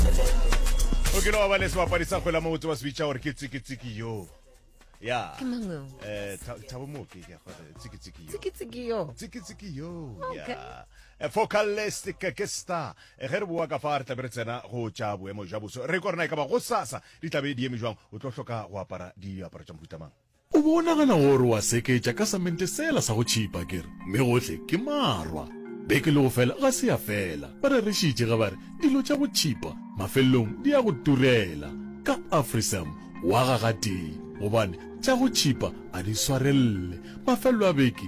o kile wa ba le sebapadi sa kgwela mabotse ba se bitša gore ke tsikitsiki yo ya Ke mang yo? Eh, Tha- thabo mooki ke a go re, tsikitsiki yo Tsikitsiki yo. tsikitsiki yo Okay. ya Eh, focalistic ke star Eh, ge re boa ka fa re tlabe re tsena go tša boemo jwa boso re ko rena e ka ba go sasa di tlabe di eme jwang o tlo hloka go apara diaparo tša mohutamang O be o nagana gore wa seketša ka samente sela sa go tšhipa, ke re, mme gohle ke marwa. Beke le go fela ga se ya fela, ba rerišitše ge ba re, Dilo tša go tšhipa mafelelong di ya go turela. Ka Afrisam wa ga gatee, gobane tša go tšhipa a di swarelele. Mafelelo a beke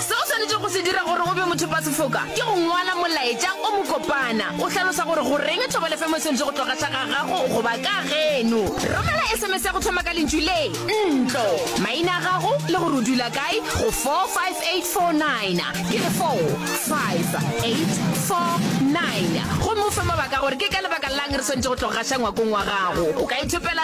Se o swanetšego go se dira gore o be mothopasefoka ke go ngwala molaetša o mokopana o hlalosa gore goreng thobalefemo e swanetše go tloga tla ga gago goba ka geno. Romela sms ya go thoma ka lentšu le, ntlo, maina a gago le gore o dula kae go 45849, ke re 45849, gomme o fe mabaka a gore ke ka lebaka la'ng re swanetše go tloga gaša ngwakong wa gago. O ka ithopela.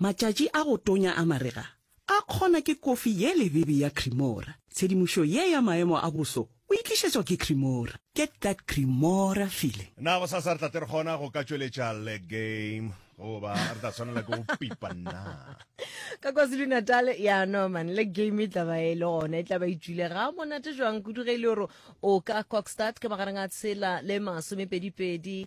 Matšatši a go tonya a marega a kgona ke kofi ye lebibi ya Cremora. Tshedimošo ye ya maemo a boso o e tlišetšwa ke Cremora. Get that Cremora feeling. Na gosasa re tla tle re kgona go ka tšweletša le game goba re tla tshwanela ke go pipa na? Ka KwaZulu-Natal ya no man, le game e tla ba e le gona, e tla ba e tšwile ga monate jwang kudu ge e le gore o ka Kokstad ka magareng a tshela le masomepedipedi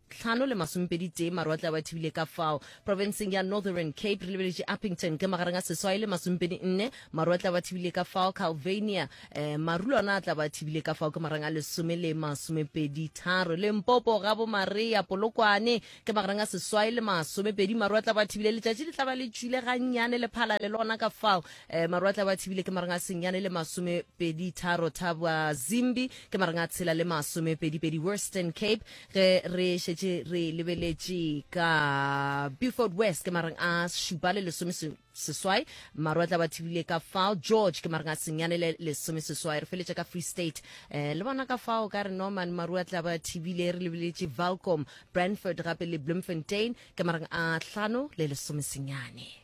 tlhano le masomepedi tee marwatle a ba thibile ka fao profenseng ya northern cape re lebeletše uppington ke magareng a seswai le masomepedi nne marwatle a ba thibile ka fao calvania eh, marulo ona a tla ba thibile ka fao ke magareng a lesome le masomepedi tharo le mpopo ga bomareya polokwane ke magareng a seswai le masomepedi marwatle a ba thibile letšatši le tla ba le tšwile gannyane le phala le lona ka fao eh, marwatle a ba thibile ke magareng a senyane le masomepedi tharo thaba zimbi ke magareng a tshela le masomepedipedi western cape ge re šetše re lebeletše ka beaufort west ke mareng a šupa le lesome seswai maru a tla ba thibile ka fao george ke mareng a senyane le lesome seswai re feletše ka free state um le bona ka fao ka re norman maru a tla ba thibile re lebeletše valcom brandford gape le bloemfontein ke mareng a hlano le lesome senyane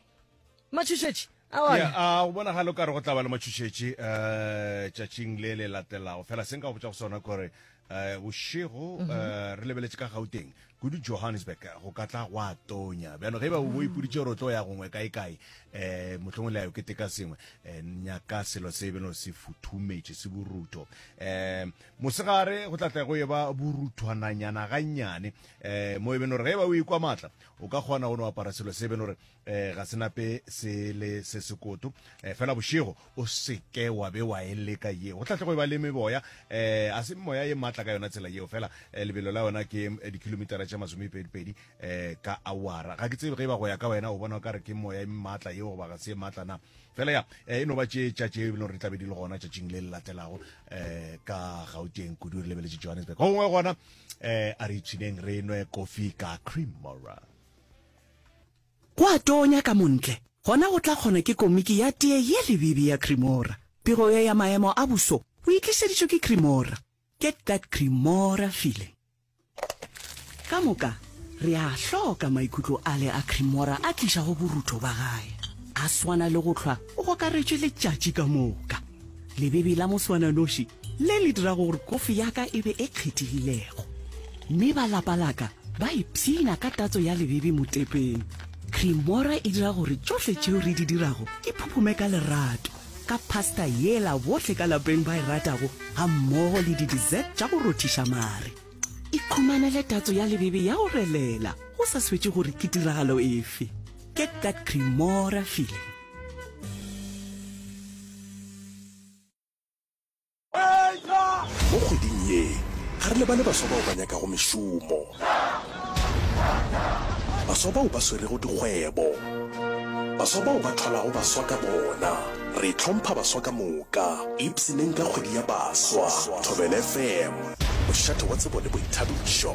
matšhošetši ya a go bonagale o ka re go tla ba le matšhošetši um eh, tšatšing le le latelago fela se nka go botsa go sona kore um bošego um re lebeletse ka gauteng kudu johannesburg go ka tla go a tonya bjano ge ba bo ipoditse gore o tlo ya gongwe kaekae um mohlongwe le ya yo keteka sengwe um nyaka selo se beno se futhumetše se borutho um mosegare go tlatla go e ba boruthwananyana gannyane um mo e beno gore ge ba o ikwa maatla o ka kgona go no apara selo se beno gore eh ga senape se le se sekoto eh fela bošego o seke wa be wa e leka yeo go tlatlego e ba le meboya eh a se moya ye matla ka yona tsela yeo fela eh, lebelo la yona ke eh, dikilomitara tša masomepedipedi eh ka awara ga ke tsebe ge e ba go ya ka wena o bona o ka re ke moya e matla yeo goba ga se e matla na fela ya eh, e no ba tše tša tše e leng gore di tlabe di le gona tšatšing le le latelago eh ka gauteng kudu re lebeletse johannesburg gongwe gona eh a re itšhineng re nwe kofi ka cream mora Go a tonya ka montle, gona go tla kgona ke komiki ya tee ye lebibi ya Cremora. Pego ye ya maemo a boso o e tlišeditšwe ke Cremora. Get that Cremora feeling. Ka moka, re a a hloka maikutlo ale a Cremora a tlišago borutho ba gae. A swana le go hlwa o gokaretšwe letšatši ka moka. Lebebi la moswananoši le le dirago gore kofi ya ka e be e kgethegilego, mme ba lapa la ka ba ipshina ka tatso ya lebebi motepeng. Creamora e dira gore tšohle tšeo re di dirago di phuphume ka lerato, ka pasta yela bohle ka lapeng ba e ratago gammogo le di-dessert tša go rothiša mare. Ikhumanele tatso ya lebebi ya go relela go sa swetše gore ke tiragalo efe. Get that Creamora feeling. Mo kgweding ye, ga re lebale baswa bao ba nyakago mešomo, baswa bao ba swerego dikgwebo, baswa bao ba tholago baswa ka bona. Re hlompha baswa ka moka. Ipshineng ka kgwedi ya baswa. Thobela FM, mošate wa tsebo le boithabišo.